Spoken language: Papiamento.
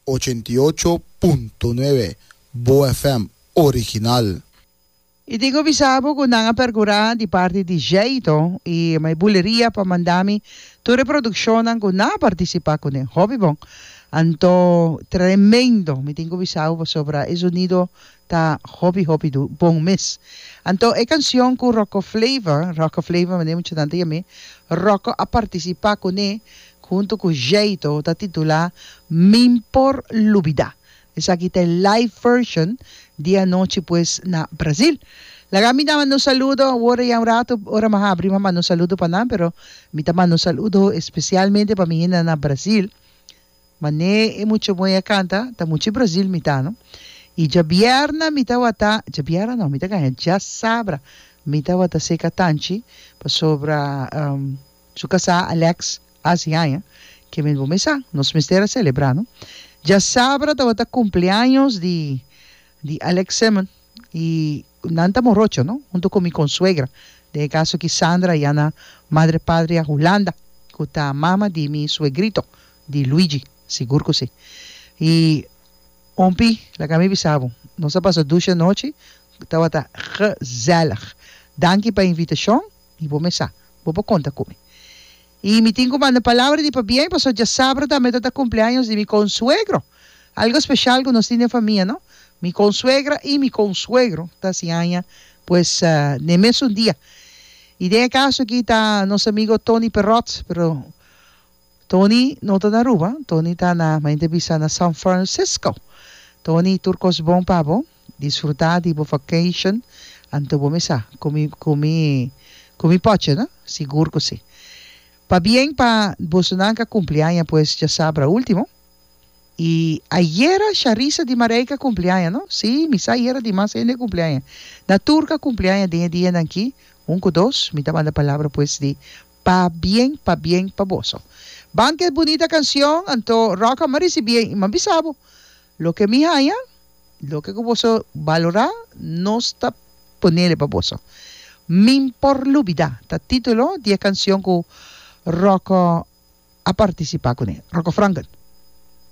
Ochenta i ocho punto nuebe Boa FM original. I tin cu bisa bo cu nan a percura di parti di Jeito y My Buleria pa manda mi tur e produccionnan cu nan a participa cu den Hobbybon. Anto, tremendo! Mi tin cu bisa bo pasobra e sonido Ta hopi hopi du bon mes. Anto e cancion cu Rocco Flavor, Rocco Flavor mande mucha tanta yam'e, Rocco a participa cune hunto cu Jayto ta titula Min por lubida. Esaki ta e live version di anochi pues na Brasil. Laga mi ta manda un saludo awor ya un rato ora mi habri mi a manda un saludo pa nan pero mi ta manda un saludo especialmente pa mi hende nan na Brasil. Mané e mucha moe a kanta ta mucha Brazil mi ta no i djabièrna mi ta wata djabièrna no mi ta kaña djasabra mi ta wata seka tanchi pasobra su kasá Alex hasi haña ke men bo mesa nos mester a selebrá no djasabra tawata kumpleaños di di Alex Simon y nan ta morocho no hunto cu mi consuegra den e caso aki Sandra y Ana madre patria Hulanda cu ta mama di mi suegrito di Luigi sigur cu si y hompy laga mi bisa bo nos a pasa dushi anochi tabata gezellig danki pa invitacion y bo me sa bo por conta cu mi. Y mi tin cu manda palabra di pabien pasobra dja sabro tambe ta ta cumpleaños di mi consuegro. Algo especial cu nos tin den famia, no? Mi consuegra y mi consuegro ta sin aña pues den mesun dia. Y den e caso aki ta nos amigo Tony Perot, pero Tony no ta na Aruba, Tony ta na, mente bisa, na San Francisco. Tony, tur cos bon pa bo. Disfrutá di bo vacation anto bo mesa ku mi ku mi ku mi pochi no? Sigur ku si. Pabien pa bosonan ka kumpli aña pues dja sabra último. I ayera Sharisa di Mareika kumpli aña no? Si mi sa ayera dimas hende kumpli aña. Na tur ka kumpli aña den e dianan aki, un ku dos, mi ta manda palabra pues di pabien pabien pa boso. Ban ku e bunita kansion anto Rocka m'a risibí mi m'a bisa bo loke mi haña Loke ku boso balorá, nos ta ponele pa boso. Min por lubidá, ta título di e kansion ku Rocco a partisipá kuné, Rocco Franken.